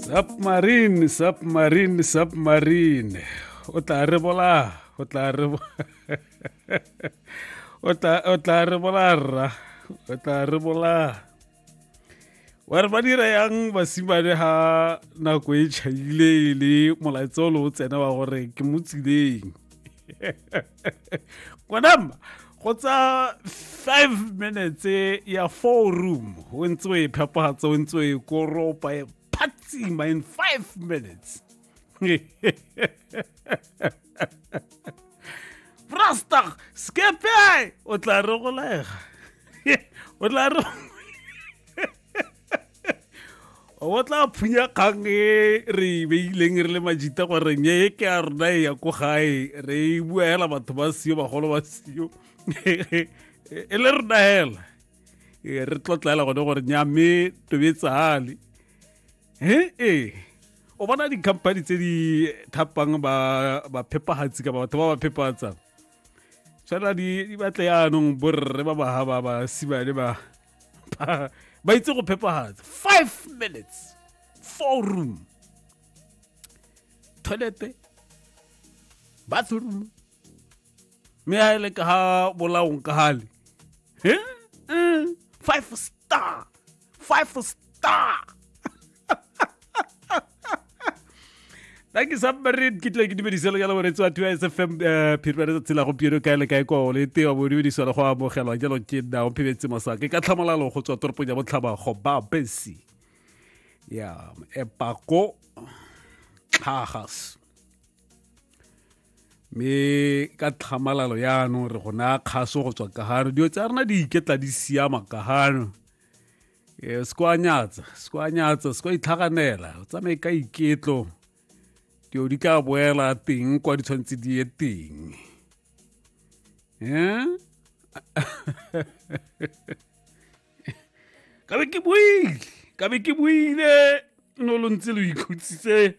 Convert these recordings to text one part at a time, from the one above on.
submarine submarine submarine o tla re bola o tla re o tla o tla re bola rra o tla re bola wa re ba dira yang basimane ha nako e tšhaile le molaetsa o le o tsena wa gore ke mo tsileng konama go tsa five minutes ya four room o ntse o e phepagatsa o ntse o e koropa e phatsima in five minutes brastar skepe o tla re go laega o tla re o tla phunya kgang e re beileng re le majita gore nye e ke a rona e ya ko gae re e bua hela batho ba sio bagolo ba sio e le rona hela e, re tlotlela gone gore nya me tobetsale e e o bona di-company tse di thapang baphepagatsi kapa batho ba ba phepatsang tshwana di batle yaanong borre ba baga ba ba simane ba ba itse go phepagatsa five minutes four room toilete bathroom mme a ele ka ga bolaong ka gale five star five star thank you submarine ke tle ke dumediselo ya loboretsi wa tiwa sfm eh, phirwa le tsatsi la gompieno kae le kae kwa o le tewa bo dumediswa le go amogelwa jalo ke nna o phebetse mosa ke ka tlhamolalo go tswa toropong ya botlhaba go ba besi ya epako tlhagas mme ka tlhamalalo yaanong re go naya kgaso go tswa kahano dilo tsa rena di iketla di siama kahano e se kwa nyatsa se kwa nyatsa se kwa itlhaganela o tsamaye ka iketlo dilo di tla boela teng kwa di tshwanetse di ye teng eh? ka be ke buile ka be ke buile no lo ntse lo ikhutsitse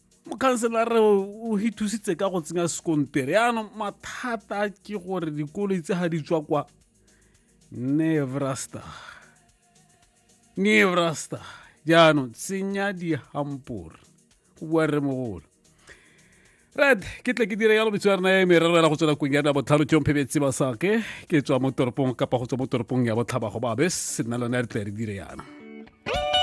mokhanselara o re thusitse ka go tsenya sekontere yaanong mathata ke gore dikoloi tse ga di tswa kwa nevrasta nevrasta jaanong tsenya dihampore go bua re mogolo red ke tle ke dire yalo metso ya rena ya merero ya go tswela kong ya na botlhano ke omphebetse ba sake ke tswa mo toropong kapa go tswa mo toropong ya botlhaba go babe se nna lone re tle re dire yana